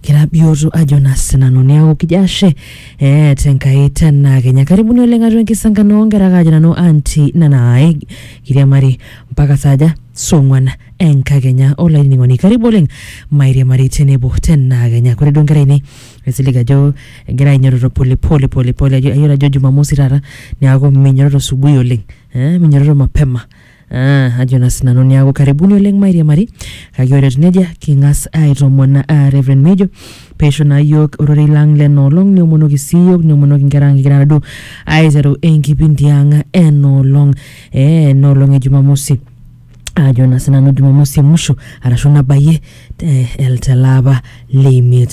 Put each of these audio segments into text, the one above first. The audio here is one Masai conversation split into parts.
Kira bioto ajo naa sinanu neaku kijo ashe eh, tenkai tena kenya karibuni oleng atua enkisankano onkera kaajo nanu anti nanai kiriamari mpaka saaja song'uan enkakenya olainining'oni karibu oleng mairiamari tenebo tena kenya kore duo nkera ainei esilig ajo egira ainyototo polepole polepole ajo ayiolo ajo jumamosi taata neaku minyototo subui oleng eh, minyototo mapema Ah, ajo naa sinanu niaku karibuni oleng mairiamari kake ore etiu nejia king'as aitoomon ah, Reverend Mejo peisho naa yiok ororei lang lena olong niomonoki sii yiok niomonoki inkera ang kigira naduo aiteru enkipindi ang ena olong eh, ena olong e Jumamosi ajo naa sinanu Jumamosi e musho arashu nabayie te- el- tele apa leimiet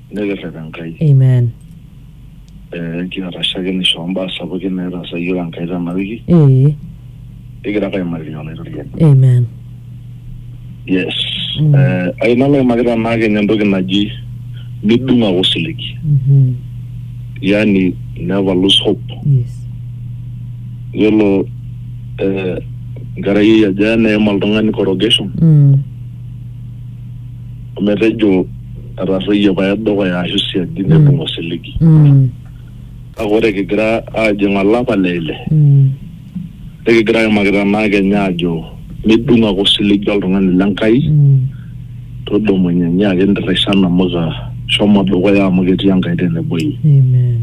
nikirrep Enkai. Amen. Eh, kiata shakenisho ombaa sapukin naitaasa yiok Enkai tena wiki. Ee. Kigira ake aimariri olaitoriani. Amen. Yes. Mm. Eh, ai nalo aimaki tenaa kenya entoki naji midung ake osiligi. Mm -hmm. Yani never lose hope. Yes. Yiolo eh, nkerai aja neim oltung'ani corrugation. Mm. ometejo etarruoyie pae dukuya ashu siadi neibung osiligi Mm. kake ore kigira aajing olapa le ile Mm. nikigira aimaki tenaa kenya aajo midung ake osiligi oltung'ani le Nkai Mm. todumunye nyiaki ntirrisa namuka shomo dukuya amu ketii Enkai tenebo iyie Amen.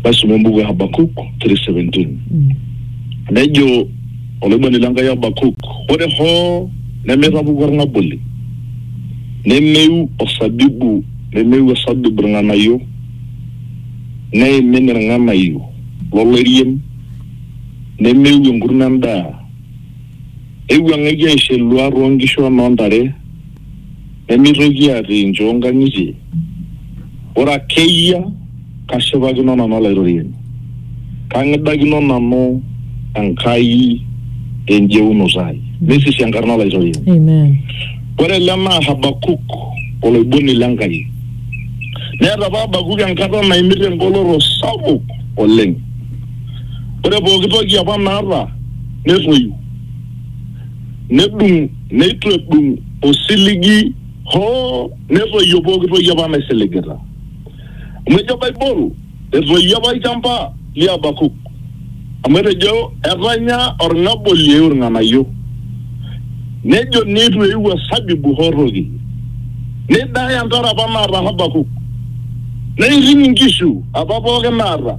maisoma embuku e Habakuk 3:17 Mm. nejo Olaibuani le Nkai Habakuk, Ore hoo nemeitapuku olng'aboli, nemeiu osabibu nemeiu osabib ilng'anayio, neimin ilng'anayio lo loirien, nemeiu enkurma endaa, neiwuang'eki aisho eluaa too nkishu o noo ntare, Nemeitoki atii nchoo nkang'itie, ore ake eyia kashipakino nanu Olaitoriani, kang'idakino nanu Enkai te njeunoto ai, neisisi enkarna Olaitoriani. Amen. Ore ele naa Habakuk, oloiboni le Nkai. Neeta apa Habakuk enkata naimita engoloto sapuk oleng. Ore pooki toki apa naata netoyu, nedung. Neitu edung osiligi hoo netoyio pooki toki apa naisiligita. Amu ejo Baibol, Etoyio apa olchamba li Habakuk, amu etejo, Etanya olng'aboli eiu ilng'anayio. Nejo neitu eiu osabibu hoo toki. Neidaya ntare apa naata Habakuk, neiting inkishu apa pooki naata.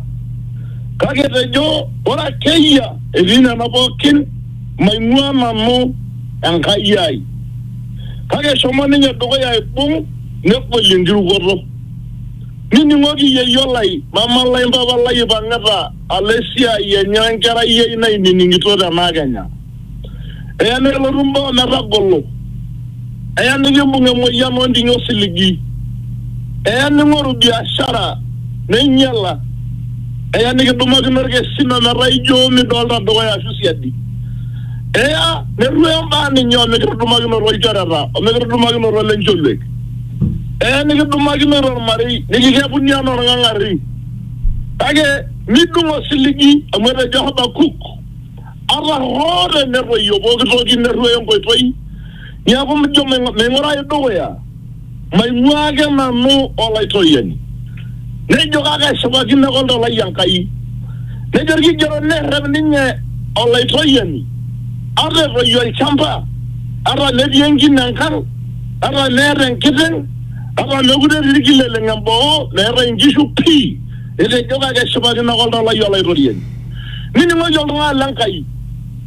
Kake etejo, Ore ake eyia etii nena pooki, maing'ua nanu Enkai ai. Kake eshomo ninye dukuya aibung negolie enkirukoto. Nining'oki yeyio lai, mama lai, mpapa lai eipang'ita alo esiai enye o enkerai ai nainining'ito tena kenya. Eya nelotu imbaa o metagolo. Eya nikimbung emoyian o ndinyo osiligi. Eya ning'oru biashara neinyala. Eya nikidumakino ilkesin o metaa ijo midolita dukuya aashu siadi. Eya nerruoyo imbaa ninye o mikitudumakinoto ilchoreta o mikitudumakinoto lencholiek. Eya nikidumakinoto olmarei nikikepuni anaa olng'ang'arri. Kake midung osiligi amu etejo Habakuk, Ata hoo tenetoyio pooki toki nerruoyo enkoitoi, Niaku mijo maing'urayu dukuya, maing'uaa ake nanu Olaitoriani. Nejo, Kake eshipakino ake oltau lai Enkai. Nejo Olkigerot, Nerrep ninye Olaitoriani ata etoyio olchamba, ata metii enkine enkang, ata meeta enkiteng, ata meekure etii ilkileleng emboo, meetae inkishu pii. Etejo, Kake eshipakino ake oltau lai Olaitoriani. Nining'oki oltung'ani le Nkai.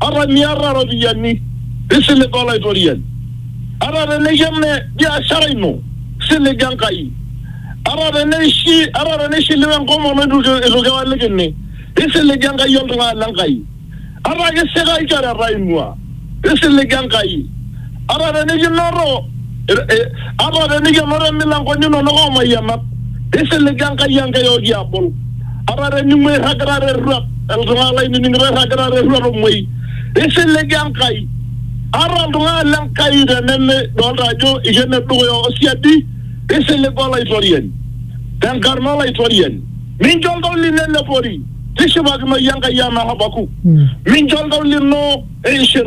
ata miata ropiyiani, tisiliga Olaitoriani. Ata teneyia mme biashara ino, siliga Enkai. Ata teneishi, ata teneishiliwe enkomono eitu eitu kiwalikini, tisiliga Enkai oltung'ani le Nkai. Ata kisika ilchoreta ing'ua, tisiliga Enkai. ata tenikinoto ata tenikenoto imilankoni inonok oomayianat, tisiliga Enkai Enkai ooki abol. Ata tening'ua irragita te rruat, iltung'ana lainining'ito irragita te rruat omuoi, tisiliga Enkai. Ata iltung'ana le Nkai tenimidolita ajo eikeno dukuya o siadi, tisiliga Olaitoriani. Te nkarna Olaitoriani, mincho oltau lino elepori, tishipakinoyu Enkai anaa Habakuk, mincho oltau lino eishir.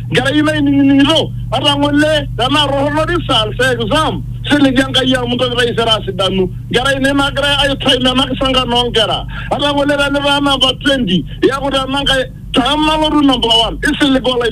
Enkerai ino ainining'ito, ata ng'ole tenaa torrono results e exam, siligi Enkai amu ntoki taisere asidanu. Enkerai ino ina agirai aitaim ena kisankan oo nkera. Ata ng'ole tenitaa namba 20, iaku te Enankai, tama alotu namba one. Isilig Olaitoriani.